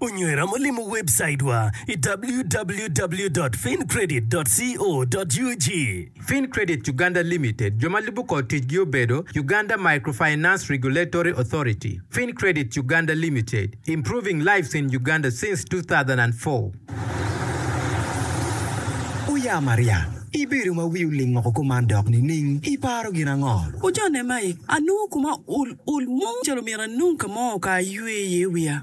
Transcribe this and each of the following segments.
Onywera ma limo webcaidwa i www.fincredit.co.ug. Fincredit Uganda Limited, jo ma lubo kor ticgi obedo, Uganda Microfinance Regulatory Authority, Fincredit Uganda Limited, improving lives in Uganda since two thousand and four. Oya Maria, ibedo ma wi oling woko kuman dok nining? Iparo gin ango? Ocone mai, anongo kuma ul ul mo calo myero anong ka mo ka aywe iye wiya.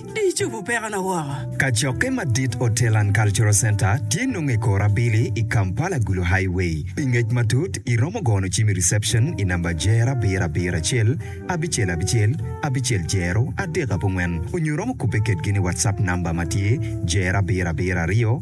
Di icobo pekona woko. Kacokke madit Hotel and Cultural Centre tye nonge i kor abili i Kampala Gulu Highway. Pi ngec matut iromo gono cim i reception i namba Jero abiro abiro acel abicel abicel abicel jero adek abongwen onyo iromo kubbe kedgi ni WhatsApp namba matye Jero abiro abiro aryo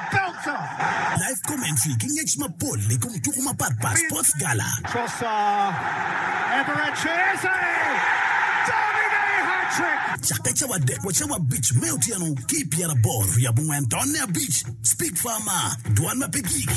Live commentary ki ngec mapol i kom tuko mapatpat Sports Gala. Cakke cawa adek wa cawa abic me otyeno ki i pyeraboro wi abongwen tonne abic, Speak Farmer, Dwan ma pe gik.